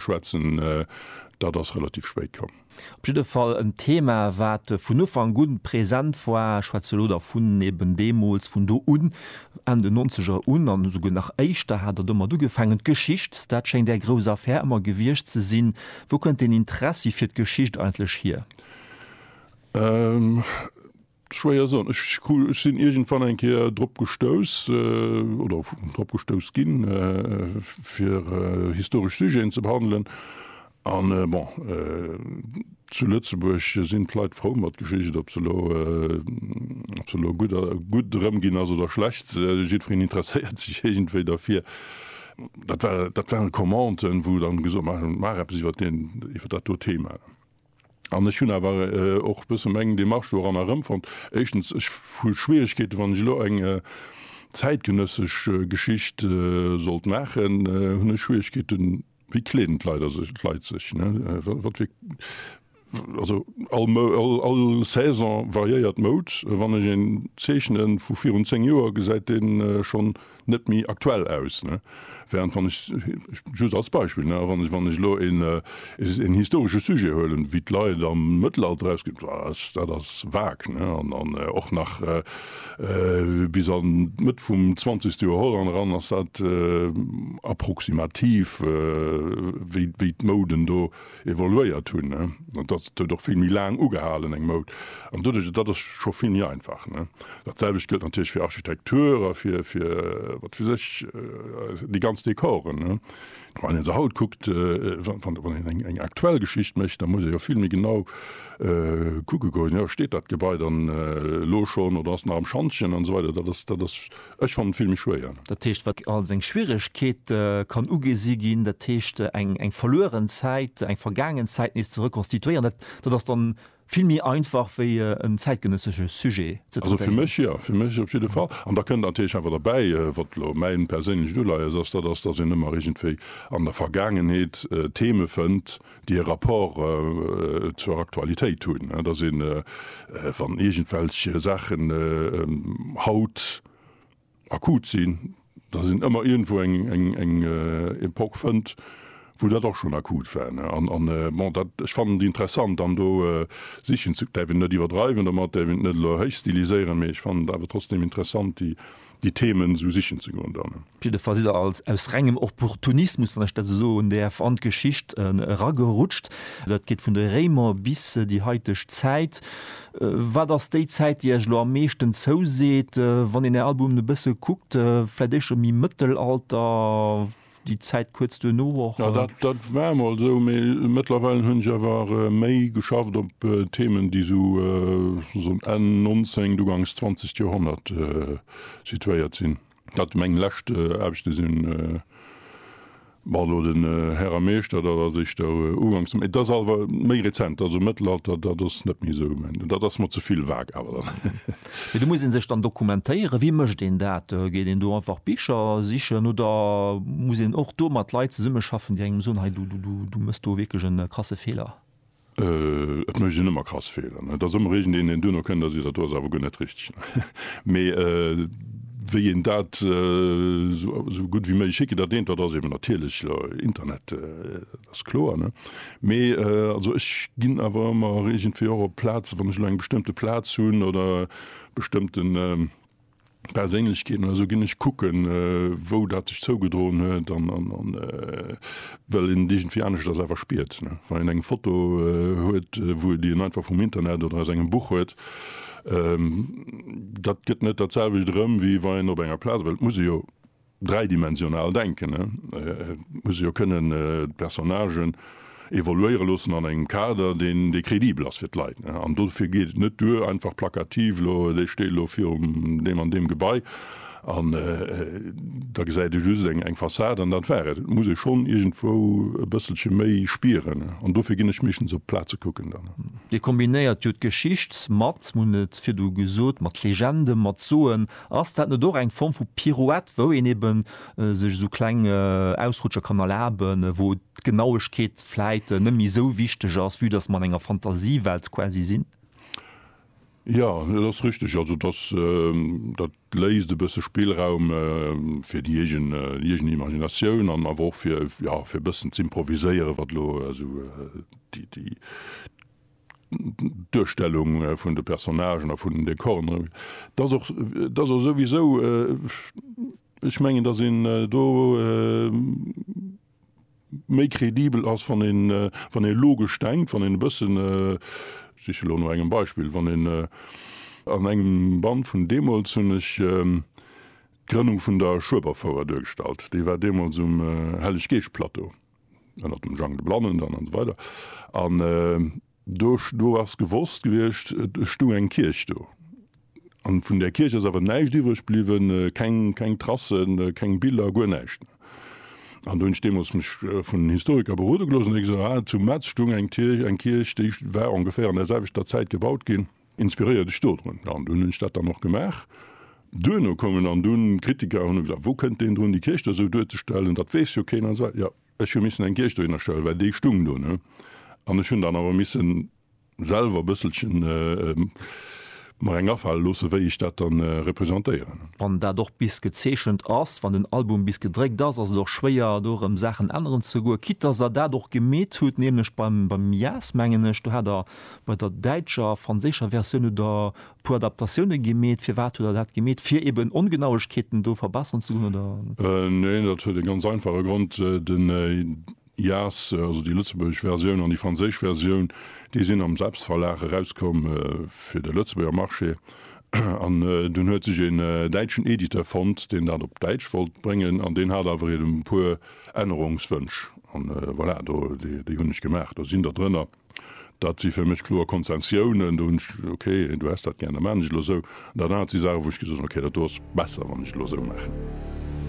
Schwätzen, dat ass relativ spéit komm. Op jidde Fall en Thema, wat vun Ufank un present war. Ech schwätze elo da vun eben deemools, vun do un, Enn den Nonzeger un an esouguer nach éischter hat Der domat ugefaangen. D'Geschicht, dat schéngt Är grouss Affär ëmmer gewiescht ze sinn. Wou kënnt deen Interessi fir d'Geschicht eigentlech hier? Schwéier soen. Ech sinn iergendwann eng Kéier drop gestouss, oder drop gestouss ginn, fir historesch Sujeten ze behandelen. An bon, zu Lëtzebuerg sinn d'Leit frou mat Geschicht, ob se elo, ob se elo gutt, gutt erëm ginn ass oder schlecht, jiddwereen interesséiert sech iergendwéi derfir. Dat war, dat waren Commenten, wou dann gesot, Maach, maach eppes iwwer deen, iwwer dat do Thema. An ech hunn awer och e bësse meng Demarche doran erëmfonnt. Éischtens, ech hu Schwieregkeeten, wann ech elo eng zäitgenëssesch Geschicht sollt maachen, hunn ech Schwieregkeeten, wéi kleen d'Leit sech, wat fir, also all Saison variéiert d'Moud. Wann ech een zeechnen vu virun 10 Joer, gesäit dee schonn net méi aktuell aus, ne, während wann ech, just als Beispill, ne, wann ech, wann ech elo een, een historesche Sujet huelen, wéi d'Leit am Mëttelalter erausginn, dat ass, dat ass vague, ne, an, an och nach bis an d'Mëtt vum zwanzegste Joerhonnert eran ass dat approximativ, wéi, wéi d'Mouden do evoluéiert hunn, an dass et huet och vill méi laang ugehalen, eng Moud, an doduerch, dat ass scho vill méi einfach. Dat selwecht gëllt natierlech fir Architektur a fir, fir wat weess ech, déi ganz Dekoren. Wann ee se haut kuckt, wann een eng, eng aktuell Geschicht mécht, da muss ee jo vill méi genau kucke goen, jo, steet dat Gebai dann elo schonn oder ass nach am Schantjen an esou weider. Dat ass, dat ass. Ech fannen d'Filme schwéier. Dat heescht, wat als eng Schwieregkeet kann ugesi ginn, dat heescht eng eng verlueren Zäit, eng vergaangen Zäit nees ze rekonstituéieren, dat dat ass dann vill méi einfach wéi en zäitgenëssege Sujet ze Also fir traitéieren. mech jo, fir mech op jidde Fall. An da kënnt natierlech awer derbäi, wat elo mäin perséinlecht Uleies ass, dat ass, datt een ëmmer iergendwéi an der Vergaangenheet Theme fënnt, déi e Rapport zur Aktualitéit hunn, dass een, wann iergendwelch Saachen haut akut sinn, dass een ëmmer iergendwou eng Epoch fënnt, wou dat och schonn akut war. An, bon, dat, ech fannen déi interessant an do sichen ze, däerf een net iwwerdreiwen domat, däerf een et net elo héichstiliséieren, mee ech fannen et awer trotzdem interessant, déi déi Themen esou sichen ze goen dann. Op jidde Fall sidd Der als, aus rengem Opportunismus, wann ech dat esou soen däerf, an d'Geschicht eragerutscht. Dat geet vun de Réimer bis déi haiteg Zäit. Wat ass déi Zäit, déi Iech elo am meeschten zouseet, wann een Är Albumen e bësse kuckt? Vläicht éischter méi Mëttelalter? déi Zäit kuerz duerno och. Jo, dat, dat war emol esou, mee mëttlerweil hunn ech awer méi geschafft op Themen, déi esou um Enn nonzéngt, ugangs zwanzegt Joerhonnert situéiert sinn. Dat meng lescht Aarbechte sinn, bon, elo den Här a Meeschter, dat ass éischter ugangs, dat ass awer méi rezent, also Mëttelalter, dat ass net méi esou, dat ass mer ze vill vague awer dann. Mee do muss ee sech dann dokumentéieren. Wéi mécht een dat? Geet een do einfach Bicher sichen oder muss een och do mat Leit zesummeschaffen, déi engem soen, hei du, du, du méchs do wierklech e krasse Feeler? Et mécht een ëmmer krass Feeler. Et ass ëmmer iergendeen, deen duerno kënnt a seet, dat do ass awer guer net richteg. Mee wéi een dat esou gutt wéi méiglech hinkritt, dat eent, dat ass eben natierlech Internet. Dat ass kloer, ne? Mee also ech ginn awer ëmmer iergendwéi och op Plazen, wann ech elo eng bestëmmte Plaz hunn oder bestëmmte Perséinlechkeeten oder esou, ginn ech kucken, wou dat sech zougedroen huet an well een et iergendwéi aneschters awer spiert, ne? Wann een eng Foto huet, wou e déi en einfach vum Internet oder aus engem Buch huet, dat gëtt net dat selwecht erëm, wéi wa een op enger Plaz, well et muss e jo, dräidimensional denken, et muss e jo kënnen d'Personnagen evoluéiere loossen an engem Kader, deen, dee credibel ass fir d'Leit. An dofir geet et net duer, einfach plakativ, elo dee steet elo virum deem an deem Gebai an da gesäit ee just eng Fassad an dat war et. Et muss ee schonn iergendwou e bësselche méi spieren an dofir ginn ech meeschtens op d'Plaze kucken dann. Dir kombinéiert jo d'Geschicht mat, hunn et virdu gesot, mat Legende, mat Soen Ass dat net och eng Form vu Pirouette, wou een eben sech esou kleng Ausrutscher kann erlaben, wou d'Genauegkeet vläit net méi esou wichteg ass, vue dass mer an enger Fantasiewelt quasi sinn? Jo, dat ass richteg. Also dass dat léisst e bësse Spillraum fir déi eegen eegen Imaginatioun an awer och fir, jo, fir e bëssen z'improviséieren, wat elo esou déi déi. d'Duerstellung vun de Personnagen a vun den Dekoren, et ass och, et ass och souwisou, ech mengen, datt een do méi credibel ass, wann een, wann ee logesch denkt, wann een e bëssen, ech siche lo no engem Beispill, wann een an engem Band vun deemools hunn ech d'Grënnung vun der Schueberfouer duergestallt, déi war deemools um Helleg-Geescht-Plateau. ënnert dem Jang de Blannen dann an esou weider an do do ass gewosst gewiescht, et stung eng Kierch do an vun där Kierch ass awer näischt iwwreg bliwwen, keng keng Tracen, keng Biller, guer näischt méi. An do hunn ech deemools mech vun den Historiker berode gelooss an hu gesot, ah zu Metz stung eng Kierch, eng Kierch déi war ongeféier an där selwechter Zäit gebaut ginn, Inspiréiert ech dodrun. An dunn hunn ech dat dann och gemaach. Duerno koumen dann dunn Kritiker hunn gesot, wou kënnt deen drun, déi Kierch do esou duerzestellen, dat weess jo keen an esou weider. Jo, ech hu missen eng Kierch dohinner stellen, well déi stung do, ne? An ech hunn dann awer missen selwer e bësselchen mer eng afale loossen, wéi ech dat dann representéieren. Wann dat och bis gezeechent ass, wann den Album bis gedréckt ass, ass et och schwéier do erëm Saachen änneren ze goen, quitt dass Der dat och gemeet hutt, nämlech beim Jazz mengen ech, do hat Der Bei der däitscher a franséischer Versioun hutt Der e puer Adaptatioune gemeet. Firwat hutt Der dat gemeet? Fir eben Ongenauegkeeten do verbessern ze goen, oder? Neen, dat huet e ganz einfache Grond, Den jas, also déi lëtzebuergesch Versioun an déi franséisch Versioun, déi sinn am Selbstverlag erauskomm fir de Lëtzebuerger Marché. An dunn huet sech een däitschen Editeur fonnt, deen dat op Däitsch wollt bréngen, an deen hat awer eben e puer Ännerungswënsch. An voilà, do, déi hunn ech gemaach, do sinn der drënner. Dat si fir mech kloer Konzessiounen. Do hunn ech gesot, okay, du häss dat gär, da maachen ech elo esou. An dat anert si Saachen, wou ech gesot hunn, okay, dat do ass besser, wann ech elo esou maachen.